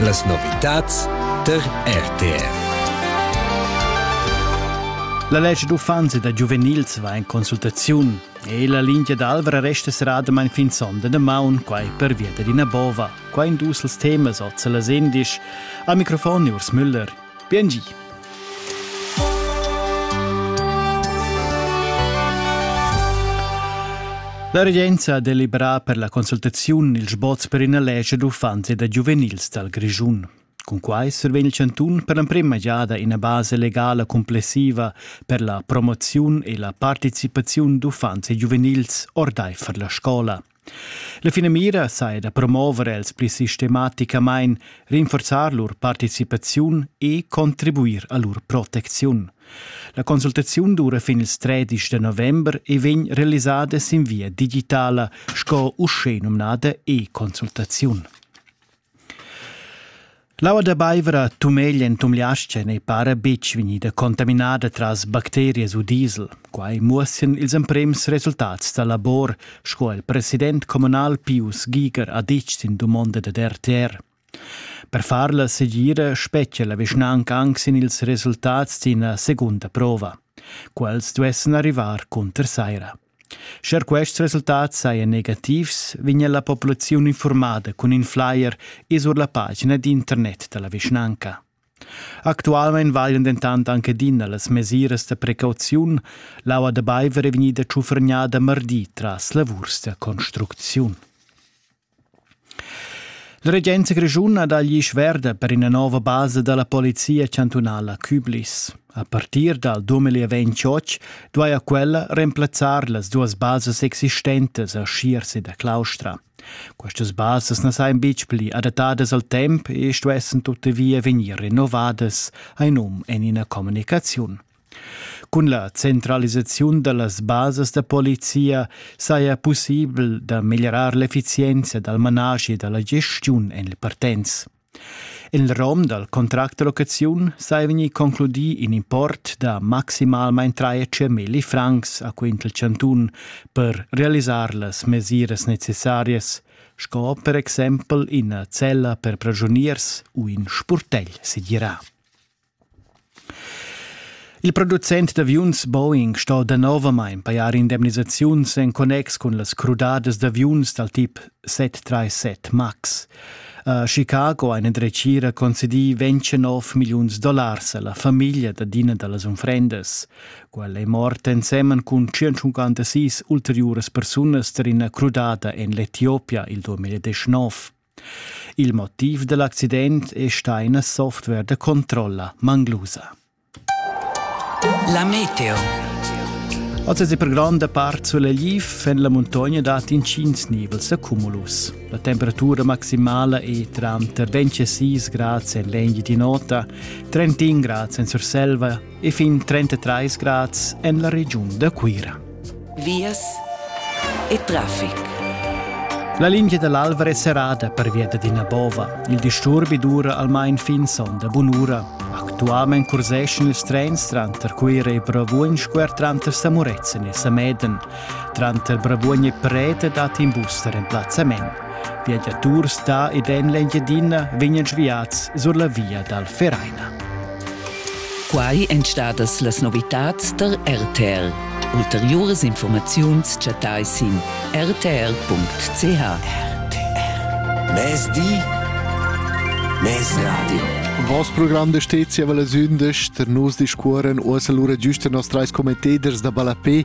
Las novitads tar RTR. La legge d'uffanzi da giuvenils va in consultaziun e la linea d'Alvra resta seradamain fin sonda da maun, quai per via d'ina bova. Qua in dus temas oz las endisch. Al microfon Urs Müller. Bien gi. La regenza ha deliberà per la consultaziun ils sboz per ina lescha d'uffants e da giuvenils dal Grischun. Cun quai survegn il chantun per l'emprima giada ina base legala complessiva per la promoziun e la participaziun d'uffants e giuvenils ordaifer la scola. La finamira saja da promover els pli sistematicamain, rinforzar lur participaziun e contribuir a lur protecziun. La consultaziun dura fin ils 13 de november e vegn realisada sin via digitala, sco uschè numnada e-consultaziun. L'aua da Beivra tumeglia en tumliascha n'ei para betg vegnida contaminada tras bacterias u diesel. Quai muossian ils emprems resultats da labor, sco il president communal Pius Giger ha ditg sin dumonda dad RTR. Per far la segira spetgia la vischnanca anc sin ils resultats d'ina segunda prova. Quels duessan arrivar cunter saira. Scher quests resultats sajan negativs, vegnia la populaziun infurmada cun in flyer e sur la pagina d'internet da la vischnanca. Actualmain valian dentant anc adina las mesiras da precauziun. L'aua da baiver è vegnida tschuffergnada mardi tras lavurs da construcziun. La regenza grischuna dà glisch verda per ina nova basa da la polizia chantunala Küblis. A partir dal 2028 duaja quella remplazzar las duas basas existentas a Schierse da Claustra. Questas basas na sajan betg pli adattadas al temp e stuessen tuttavia vegnir rinnovadas, ha num en ina communicaziun. Cun la centralisaziun dallas basas da polizia saja pussibel da meglierar l'effizienza dal manaschi e dalla gestiun en il Partenz. Il rom dal contract da locaziun saja vegnì concludì in import da maximalmain 300.000 francs a quint il chantun per realisar las mesiras necessarias, sco per exempel ina cella per pragioniers u in spurtegl segirà. Il producent d'aviuns Boeing sto danovamain pajar indemnisaziuns en connex cun las crudadas d'aviuns dal tip 737 MAX. A Chicago ha ina dretgira concedì 29 milliuns dollars a la famiglia dad ina da las unfrendas. Quella è morta ensemen cun 156 ulteriuras persunas tar ina crudada en l'Etiopia il 2019. Il motiv da l'accident è stà ina software da controlla manglusa. La meteo. Oz è per gronda part sulegl en la muntogna dat intgins nivels accumulus. La temperatura maximala è tranter 26 grads en l'engi di nota, 31 grads en Surselva e fin 33 grads en la regiun da Cuira. Vias e traffic. La linea dall'Alva è serrada pervia d'ina bova. Il disturbi dura almain fin sonda bunura. Actualment curseschan ils trens tranter Cuira e Bravuogn squer tranter Samurezzen e Sameden. Tranter Bravuogn e Prete dat in bus tar emplazzament. Viagiaturs da ed en l'Engiadina vegnan sviads sur la via dal Vereina. Quai èn stadas las novitads tar RTL. Ulteriuras informaziuns chattai sin rtr.ch. RTL. Mezdi, Mezradio. Voss program de stezia valla sündesch, ter nus discuoren uossa lura giusta nos trais commenteders da ballapé